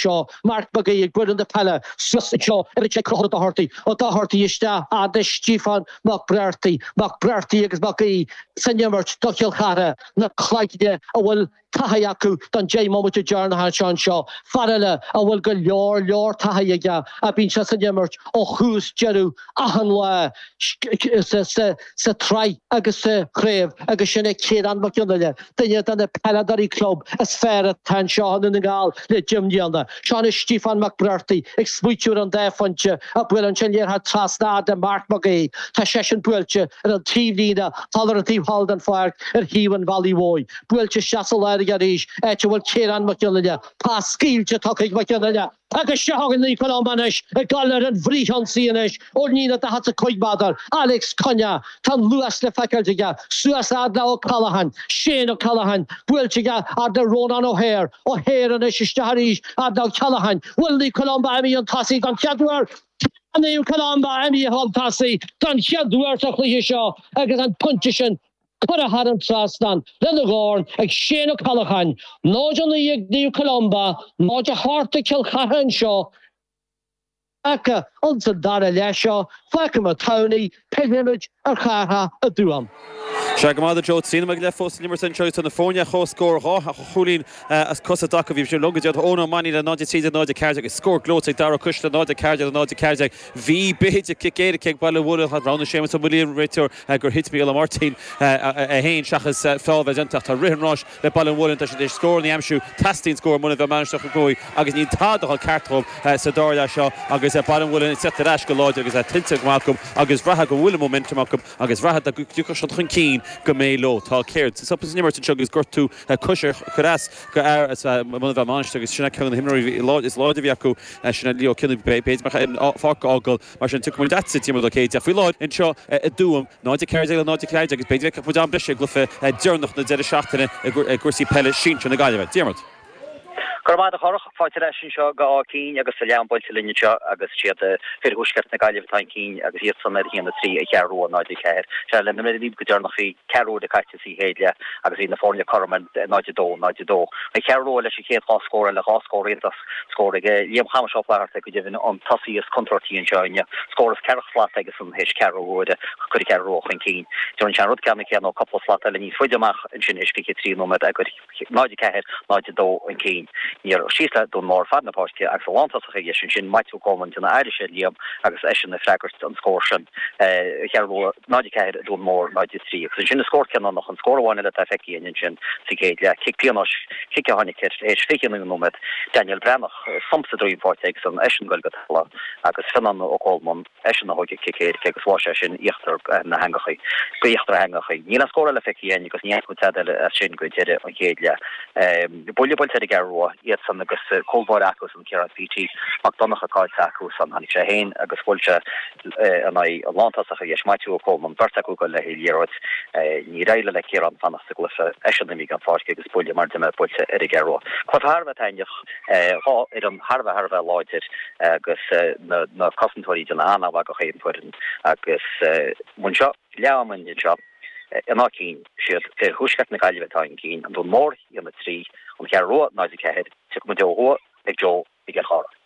seo. Marc Mag Aoidh ag buaileadh na peile suas anseo ar an 6 Conchúr Ó Dochartaigh, Ó Dochartaigh isteach agus Stiofán Mac Breartaigh, Mac Breartaigh agus Mag Aoidh san imirt do Chill Chartha, na cloigne a bhfuil taithí acu don deich mbomaite deireanach seo anseo. Fear eile a bhfuil go leor leor taithí aige a bhíonns san imirt ó thús deireadh achan lá sa sa tsraith agus sa chraobh agus sin é Ciarán Mag Fhionnaile, duine de na peileadóirí club is fearr atá anseo i nDún na nGall le deich mbliana. Seo anois Stiofán Mac Breartaigh ag smaoitiú ar an dá phointe ach buaileann sé an liathróid trasna fhad le Marc Mag Aoidh. Tá seisean buailte ar an taobhlíne thall ar an taobh thall den pháirc ar thaobh an bhealaigh mhóir. Buailte isteach sa lár aige arís, áit a bhfuil Ciarán Mag Fhionnaile. Pas scaoilte tugtha ag Mag Fhionnaile. Agus seo chugainn Naomh Columba anois ag dul ar an bhfrithionsaí anois ón líne daichead 's a cúig meadar, Alex Cunnea, tá an luas le feiceáilt aige, suas fhad le Ó Ceallacháin, Shane Ó Ceallacháin, buailte aige fhad le Ronan O'Hare, O'Hare anois isteach arís fhad le Ó Ceallacháin, bhfuil Naomh Columba imithe chun tosaigh don chéad uair, tá Naomh Columba imithe chun tosaigh don chéad uair sa chluiche seo agus an pointe sin curtha thar an trasnán lena dhorn ag Shane Ó Ceallacháin, 0 9 ag Naomh Columba, 0 8 ag Cill Chartha anseo ach insan dara leath seo faiche Thamhnaigh, pillfimid ar Chárthach i dTuaim. Sea go raibh maith agat Joe, trí nóiméad go leith fós san imirt anseo agus tá na foirne ar chomhscór, dhá chúilín as cosa acu ó bhí mise libh go deireanach, Eoin Ó Mainnín le 0 13 0 14 agus scór gleoite ag Darragh Costello 0 14 0 14. Bhí b'fhéidir cic éirice ag Baile an Mhuilinn ach roghnaigh Séamus Ó Maolmhuaidh, an réiteoir, gur thit Mícheál Martin é fhéin, seachas feall a bheith déanta ach tá rith an ráis le Baile an Mhuilinn, tá siad tar éis scóranna a aimsiú, teastaíonn scór ó Mhuine Mheá Mainistir Chnoc Muaidh agus níl tada ag dul ceart dhóibh sa dara leath seo agus Baile an Mhuilinn ag teacht ar ais go láidir agus tuillte go maith acu agus bhraithfeá go bhfuil an momentum acu agus bhraithfeá dá dtiocfadh siad chun cinn go mbeidh leo. Tá céard? Stop san imirt anseo agus gortú coise ag cur as d'fhear Mhuine Mheá Mainistir agus sin ceann de na himreoirí is láidre a bhí acu, sin Leo Cinnane b'fhéidir an pháirc a fhágáil. Mar sin, tiocfaidh muid leatsa, Diarmuid Ó Céidigh, ach faoi láthair, anseo i dTuaim, 0 14 le 0 14 agus b'fhéidir go bhfeicfeadh muid am breise i gcluiche deireanach na deireadh seachtaine i gcúrsaí peile sinsir na Gaillimhe. Diarmuid. Go raibh maith agat, a Chárthaigh. Fáilte ar ais anseo go Áth Cinn agus leath ama buailte linn anseo agus is iad fir thuaisceart na Gaillimhe atá chun cinn agus iadsan ar a haon a trí an Cheathrú Rua 0 4. Sea, labhair mé libh go deireanach bhí ceathrú uaire caite. sa chéad leath agus bhí na foirne cothrom ar 0 2, 0 2. An Cheathrú Rua leis an chéad dhá scór eile, dhá scór iontach, scór ag Liam Chamais Ó Flaithearta go deimhin an tosaí is contúirtí anseo inniu, scór as ceathracha slat aigesan théis ceathrú uaire, chuir an Cheathrú Rua chun cinn. Rinne sé an rud ceannann céanna ó cupla slat eile níos faide amach ansin théis fiche trí nóiméad eagair. 0, 4, 0, 2, an cinn níor síos le Dún Mór fad na páirce agus a lántosach ar dheis ansin, Maitiú Coleman de na Irish ar Liam agus eisean ag freagairt an scór sin. An Cheathrú Rua, 0, 4 Dún Mór, 0, 3 agus ansin an scór cinniúnach, an scór amháin eile atá feicthe againn ansin sa gcéad leath, cic píonóis, cic a tháinig tar éis 29 nóiméad, Daniel Breathnach, sonc sa droim faighte aige san, eisean ag goil go talamh agus Fionán Ó Colmán. eisean a thóg an cic agus sháigh seisean íochtar na heangachaí go híochtar na heangachaí. Níl aon scór eile feicthe againn as sin go deireadh an chéad leath. Buille buailte ar an gCeathrú Rua iadsan agus cúl báire acu san Ciarán CT Mac Donnacha caillte acu san. Tháinig sé fhéin agus bhuail sé in aghaidh an lántosach ar dheis Maitiú Ó Cólmáin an bheirt acu ag goil le haghaidh liathróid. Níor éirigh le Ciarán fanacht sa gcluiche, eisean a d'imigh den pháirc agus buille mar a deirim buailte ar an gCeathrú Rua. Cluiche thar a bheith taitneamh. Dhá fhoireann thar a bheith thar a bheith láidir agus na cosantóirí ag déanamh an-mhaith do chaon fhoireann agus bhain seo leath ama den seo in áit cinn. Siad fir thuaisceart na Gaillimhe atá chun cinn, An Dún Mór 1-3 An Cheathrú Rua 0-4. Tiocfaidh muid ó thuaidh ag Joe i gCill Chartha.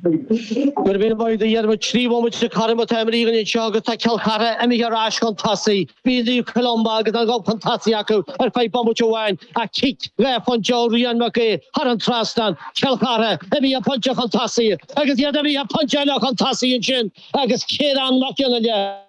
Go raibh míle maith agat a Dhiarmaid trí bhomaite chóir a bheith atá imeartha againn anseo agus tá Cill Chartha imithe ar ais chun tosaigh. Bhí Naomh Columba agus an gob chun tosaigh acu ar feadh bomaite amháin ach cic dhá phointe ó Rian Mac Aoidh thar an trasnán, Cill Chartha imithe pointe chun tosaigh agus iad imithe pointe eile chun tosaigh ansin agus Ciarán Mac Fhionnaile.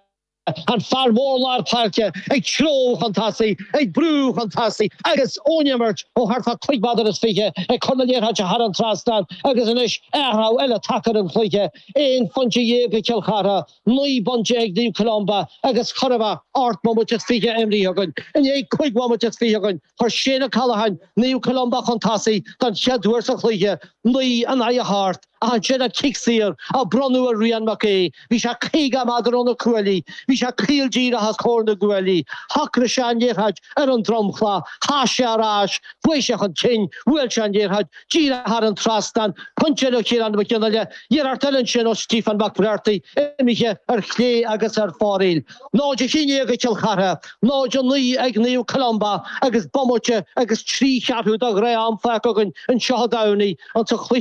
An fear mór lár páirce ag treabhadh chun tosaigh, ag brú chun tosaigh agus ón imirt ó thart fá cúig mhéadar is fiche ag cur na liathróide thar an trasnán agus anois athrú eile tagtha ar an chluiche, aon phointe dhéag ag Cill Chartha, naoi bpointe ag Naomh Columba agus chóir a bheith ocht mbomaite is fiche imeartha againn. I ndiaidh cúig bhomaite is fiche againn, chuir Shane O'Callaghan Naomh Columba chun tosaigh don chéad uair sa chluiche, naoi in aghaidh a hocht. Ansin an cic saor a bronnadh ar Rian Mac Aoidh. Bhí sé 50 méadar ó na cuaillí. Bhí sé caol díreach os comhair na gcuaillí. Shocraigh sé an liathróid ar an dromchla. Chas sé ar ais. Bhog sé chun cinn. Bhuail sé an liathróid díreach thar an trasnán. Pointe ó Chiarán Mac Fhionnaile. Iarracht eile ansin ó Stephen McBrearty. Imithe ar chlé agus ar fóraoil. 0-11 ag Cill Chartha. 0-9 ag Naomh Columba agus bomaite agus trí cheathrú de ghnáth-am fágtha againn anseo i dTamhnaigh an.